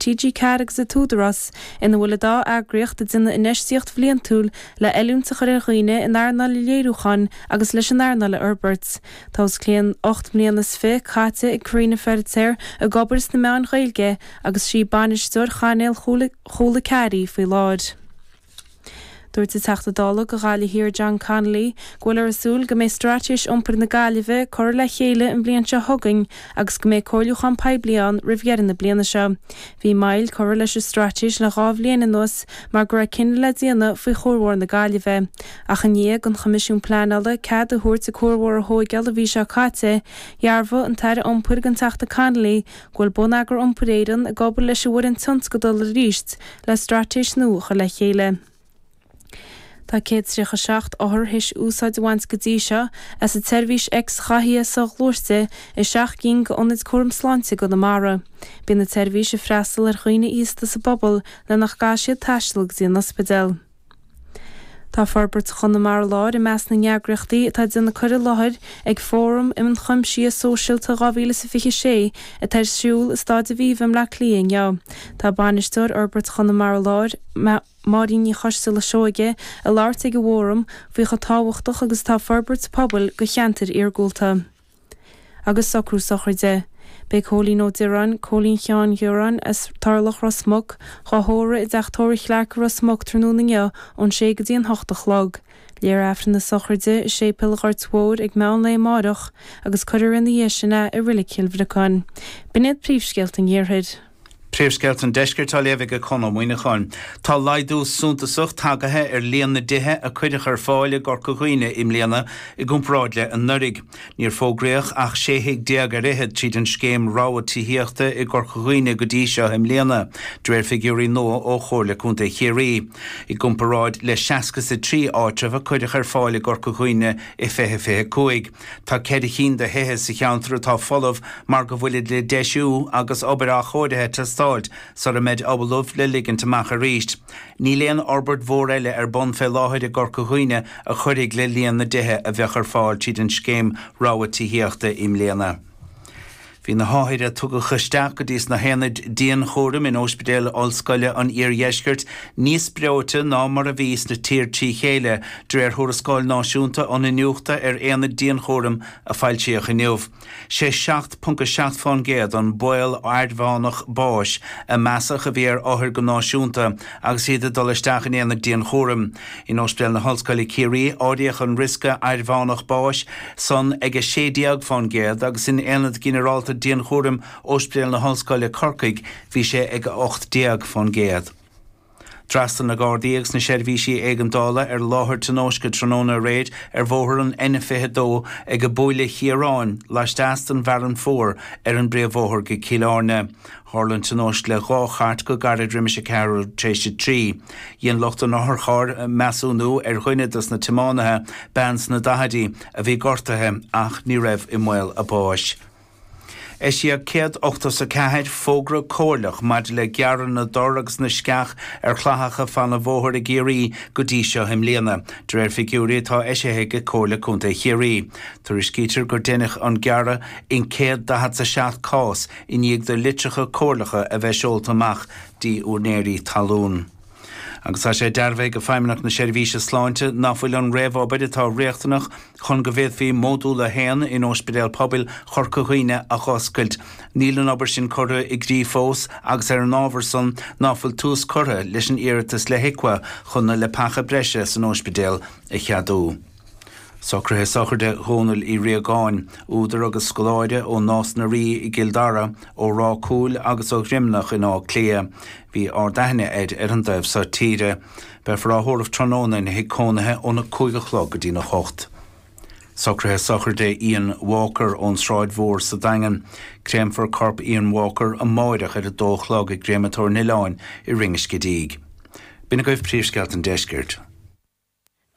TG Ceathair agus an tÚdarás, ina bhfuil an dá eagraíocht ag déanamh infheistíocht bhliantúil le oiliúint a chur ar dhaoine in earnáil an léiriúcháin agus leis an earnáil a fhorbairt. Tá os cionn ocht mbliana is fiche caite ag Karina Feiritéar ag obair sna meáin Ghaeilge agus is í bainisteoir chainéal Chúla Ceathair í faoi láthair. Dúirt an Teachta Dála do Ghaillimh Thiar John Connolly go bhfuilthear ag súil go mbeidh Straitéis Iompair na Gaillimhe curtha le chéile an bhliain seo chugainn agus go mbeidh comhairliúchán poiblí ann roimh dheireadh na bliana seo. Bhí moill curtha leis an Straitéis le dhá bhliain anuas mar go raibh cinneadh le déanamh faoi chuarbhóthar na Gaillimhe, ach i ndiaidh don Choimisiún Pleanála cead a thabhairt an cuarbhóthar a thóigeáil an mhí seo caite, dhearbhaigh an tAire Iompair don Teachta Connolly, go bhfuil Bonneagar Iompair Éireann ag obair leis an bhfoireann tionscadail arís le straitéis nua a chur le chéile. Tá 137 othar théis úsáid a bhaint go dtí seo as an tseirbhís x-ghathaithe soghluaiste i seacht gcinn d'ionaid cúraim sláinte i gConamara. Bíonn an tseirbhís ag freastal ar dhaoine aosta sa bpobal le nach gcaithfidh siad taisteal go dtí an ospidéal. Tá Forbairt Chonamara Láir i measc na n-eagraíochtaí atá ag déanamh cur i láthair ag Fóram um Chuimsiú Sóisialta 2026 atá ar siúl i Stáid Aviva i mBleá Cliath inniu. Tá Bainisteoir Fhorbairt Chonamara Láir, Máirín Ní Choisteala-Seoige ag labhairt ag an bhFóram faoi chomh tábhachtach agus atá forbairt pobail do cheantair iargúlta. Agus socrú sochraide. Beidh Cóilín Ó Dioráin, Cóilín Sheáin Dhioráin, as Turlach, Ros Muc, dhá thórramh i dTeach Tórraimh Chlearc i Ros Muc tráthnóna inniu ón sé go dtí an hocht a chlog. Léifear Aifreann na sochraide i Séipéal Ghoirt Mhóir ag meán lae amáireach agus cuirfear ina dhiaidh sin é i Roilic Chill Bhriocáin. B'in iad príomhscéalta an iarthair. Príomhscéalta an Deiscirt á léamh ag Conall Ó Muineacháin. Tá laghdú suntasach tagaithe ar líon na dtithe a cuireadh ar fáil i gCorca Dhuibhne i mbliana i gcomparáid le anuraidh. Níor fógraíodh ach 16 thigh ar fhichead tríd an scéim rogha tithíochta i gCorca Dhuibhne go dtí seo i mbliana, de réir figiúirí nua ó Chomhairle Contae Chiarraí, i gcomparáid le 63 áitreabh a cuireadh ar fáil i gCorca Dhuibhne i 2025. Tá ceithre chinn de thithe sa cheantar atá folamh mar go bhfuilid le deisiú agus obair athchóirithe ag teastáilt sar a mbeid ollamh le ligint amach arís. Níl aon fhorbairt mhór eile ar bun fé láthair i gCorca Dhuibhne a chuirfidh le líon na dtithe a bheadh ar fáil tríd an scéim rogha tithíochta i mbliana. Bhí na hothair a tugadh isteach go dtí sna haonaid dianchúraim in Ospidéal Ollscoile an Iardheiscirt níos breoite ná mar a bhí sa tír trí chéile, de réir thuarascáil náisiúnta an Iniúchta ar Aonaid Dianchúraim a foilsíodh inniu. Sé 7.7 fán gcéad an baol airmheánach báis a measadh a bhí ar othair go náisiúnta agus iad ag dul isteach in aonad dianchúraim. In Ospidéal na hOllscoile Ciarraí áiríodh an riosca aird-mheánach báis san ag 16 fán gcéad agus in Aonad Ginearálta Dianchúraim Ospidéal na hOllscoile Corcaigh bhí sé ag 18 fán gcéad. D'fhreastail na Gardaí agus na seirbhísí éigeandála ar láthair tionóisce tráthnóna aréir ar bhóthar an N22 ag Buaile Chiaráin laisteas den bhFearann Fuar ar an bpríomhbhóthar go Cill Airne. Tharla an tionóisc idir dhá chairt go gairid roimis a ceathrú tar éis a trí. Dhein lucht an otharchairr measúnú ar dhuine de na tiománaithe, bean sna daichidí, a bhí gortaithe ach ní raibh i mbaol a báis. Eisíodh céad ochtó is a ceathair fógra comhairleach maidir le gearradh na dtor agus na sceach ar chlathacha fan an bhóthair i gCiarraí go dtí seo i mbliana, de réir figiúirí atá eisithe ag Comhairle Contae Chiarraí. Tuairiscítear gur deineadh an gearradh in céad daichead 's a seacht cás, i ndiaidh do litreacha comhairleacha a bheith seolta amach go dtí úinéirí talún. Agus tá sé dearbhaithe ag Feidhmeannacht na Seirbhíse Sláinte nach bhfuil an réamhobair atá riachtanach chun go bhféadfaí Módúl a hAon in Óispidéal Pobail Chorca Dhuibhne a dh'oscailt, níl an obair sin curtha i gcrích fós agus ar an ábhar san ná fuil tús curtha leis an iarratas le HIQA chun na leapacha breise san óispidéal a cheadú. Socruithe sochraide Dhónaill Uí Riagáin, údar agus scoláire ó Nás na Rí i gCill Dara, ó Ráth Cúil agus ó Dhroimneach in Áth Cliath, bhí ard-aithne air ar an dtaobh so tíre. Beifear á thórramh tráthnóna ina thigh cónaithe óna cúig a chlog go dtína hocht. Socruithe sochraide Ian Walker ón tSráid Mhór sa Daingean, créamfar corp Ian Walker amáireach ar a dó a chlog i gCréamatóir an Oileáin i Rinn an Scidígh. B'in agaibh príomhscéalta an deiscirt.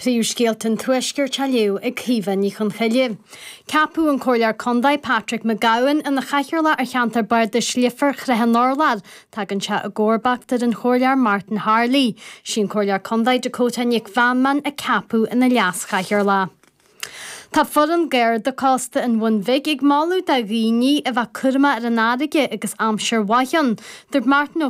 Príomhscéalta an Tuaiscirt á léamh ag Caoimhe Ní Chonchoille. Ceapadh an Comhairleoir Condae Patrick McGowan ina Chathaoirleach ar Cheantar Bardais Leifear Srath an Urláir. Tagann sé i gcomharbacht ar an Chomhairleoir Martin Harley. Sí an Comhairleoir Condae Dakota Nic Mheanman a ceapadh ina Leas Chathaoirleach. Tá foireann Gharda Cósta an Bhun Bhig ag moladh do dhaoine a bheith cúramach ar an fharraige agus aimsir mhaith ann. Dúirt Martin Ó.